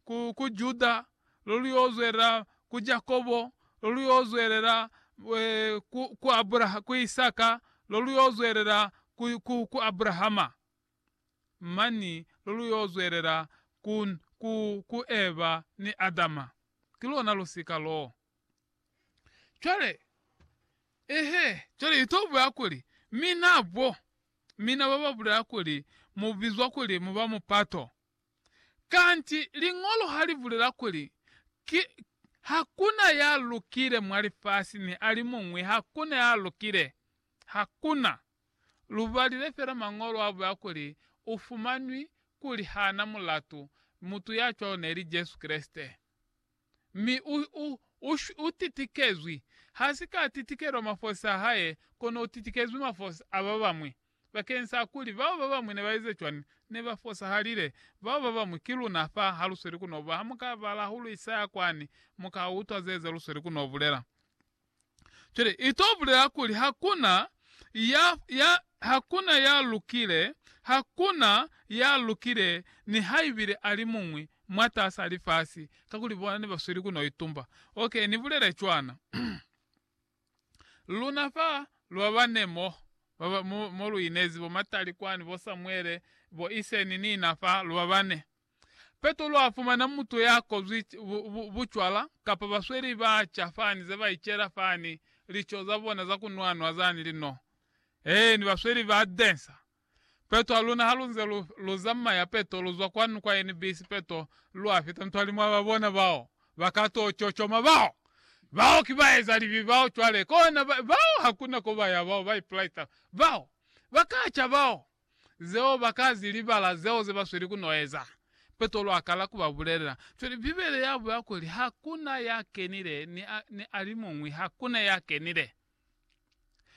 ku, ku Juda, lo lu yo zwelela ku Jakobo, lo lu yo zwelela e, ku, ku Abraha, ku Isaka, lo lu yo zwelela ku, ku, ku Abrahama, mani lo lu yo zwelela ku, ku, ku Eva ni Adama. Ki lona lusika loo. Cwale, ehe, cwale i to bulela kuli, Mina bo, mina ba ba bulela kuli mu bizwa kuli mu ba mupato. Kanti Liñolo ha li bulela kuli, Ki, ha ku na ya lukile mwa lifasi, ni alimuñwi ha ku na ya lukile. Ha ku na. Lu balile fela Mañolo a bulela kuli u fumanwi kuli ha na mulatu, mutu ya cwalo neli Jesu Kreste. mi u, u, u, u titikezwi, ha si ka titikelwa mafosi a hae, kono u titikezwi mafosi a ba bamwi. Bakeñisa kuli bao ba bamwi ne ba eze cwani, ne ba fosahalile. Bao ba bamwi ki luna fa, ha lu sweli ku no bula. Ha mu ka bala hahulu Isaya kwani, mu ka utwa ze, ze lu sweli ku no bulela. Cwale, i to bulela kuli hakuna ya, ya, hakuna ya lukile, hakuna ya lukile, nihaibile alimuñwi mwatas'a lifasi, kakuli bona ne ba sweli ku no itumba. Ok, ni bulele cwana. Luna fa, lu ba bane mo, ba ba, mo, mo lu inezi, bo Matali kwani, bo Samuele, bo Iseni, ni na fa, lu ba bane. Petro a fumana mutu ya kozwi bucwala kapa basweli ba ca fani ze ba icela fani lico za bona za ku nwanwa zani li no. Eeni, basweli ba densa. Petro a luna ha lu nze lu, lu zamaya peto lu zwa kwanu kwa NBC peto lu a fita ntwali mwa ba bona bao ba ka to cocoma bao. Bao ki baeza libi bao cwale kona ba, bao hakuna ko ba ya bao ba ipulaita bao. Ba ka ca bao. zeo ba ka zi libala zeo ze ba sweli ku n'o eza. Petro a kala ku ba bulelela cwale, Bibele ya buya kuli, Ha ku na ya kenile, ni a, ni alimuñwi ha ku na ya kenile.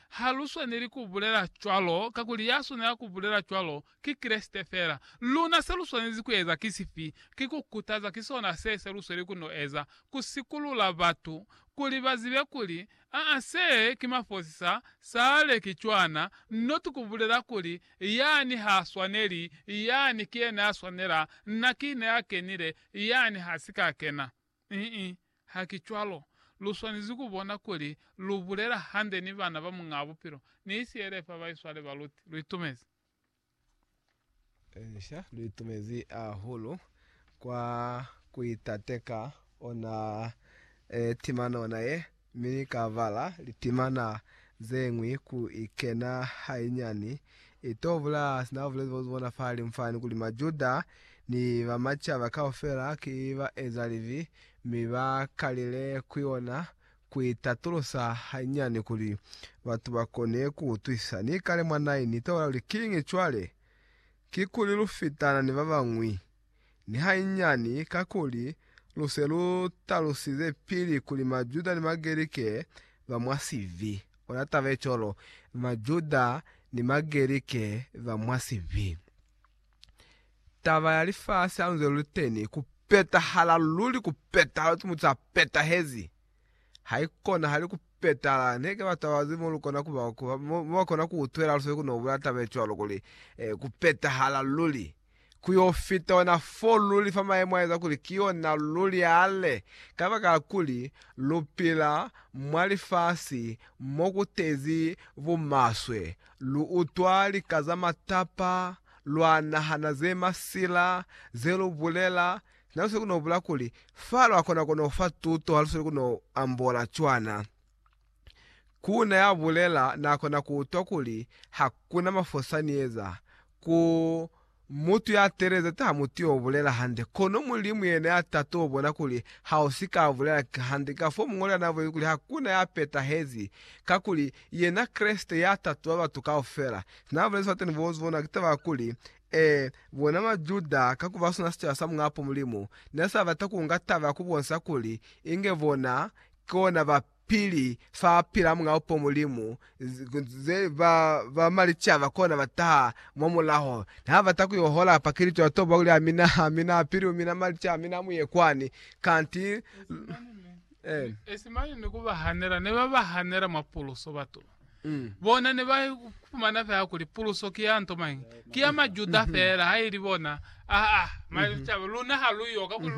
Ha lu swaneli ku bulela cwalo, kakuli ya swanela ku bulela cwalo, ki Kreste fela. Luna se lu swanezi ku eza ki sifi? Ki ku kutaza, ki sona se, se lu sweli ku n'o eza, ku sikulula batu, kuli ba zibe kuli Aa se ki mafosi sa sale ki cwana not kubulela kuli yani ha swaneli yani ki yena ya swanela na ki yena ya kenile yani ha si ka kena ii ha ki cwalo lu swanezi ku bona kuli lu bulela hande ni bana ba Muñaa Bupilo ni sielefa ba iswale ba luti lu itumezi Inca lu itumezi ahulu kwa ku itate ka ona timana ona ye, mi ni ka bala litimana ze ñwi ku ikena hainyani. I to bula sina ba bulezi bozi bona fahalimu fani kuli Majuda ni ba macaba kaufela ki baezalibi, mi ba kalile ku yona. Ku itatulusa hanyani kuli batu ba kone ku utwisa. Ni kale mwa nai ni taula kuli, Kiñi cwale? Kikuli lu fitana ni ba bañwi? Ni hanyani, kakuli lu se lu talusize pili kuli Majuda ni Magerike ba mwa sibi. Ona taba ye cwalo, Majuda ni Magerike ba mwa sibi. Taba ya lifasi hanze luliteni ku petahala luli ku petahala uti mutu a petahezi haikonahali ku petahala neke batu babazi molukona kuba mobakona ku utwela luse kuno bula taba ecwalo kuli e ku petahala luli ku yo fita ona fo luli fa maemo a eza kuli ki yona luli yale kabakala kuli lupila mwa lifasi mokutezi bumaswe Lu utwa lika za matapa, lwa nahana ze masila ze lu bulela. Na lu sili ku no bula kuli, Fa lwa kona ku no fa tuto ha lu sili ku no ambola cwana. Ku na ya bulela na kona ku utwa kuli ha ku na mafosani eza ku Mutu ya teeleza taha mutu yo bulela hande, kono Mulimu yena ya ta to bona kuli ha u si ka bulela hande. Kafoo mu ngolela navweli kuli hakuna ya petahezi, kakuli yena Kreste ya tatuba batu kaufela. Sina bulezi fa teni bo zu bonwa ki taba ya kuli, ee, bona Majuda, ka ku ba sona sicaba sa Muñapo Mulimu, ne sa bata ku nga taba ya ku bonisa kuli inge bona ki ona ba pili fa pila mwa upo Mulimu, ze ba ba malicaba kona ba taha mwa mulaho. Ne ha bata ku yo hola pa Kilito, ya toba kuli, Amina, amina, pili mina malicaba mina mu ye kwani. Kanti, eh. Esi mane ni ku ba hanela, ne ba ba hanela mwa puluso batu. Bona ne ba fumana fela kuli puluso ki ya nto mañi? Ki ya Majuda fela, ha ili bona. Ah, ah, malicaba, luna ha lu yo, kakuli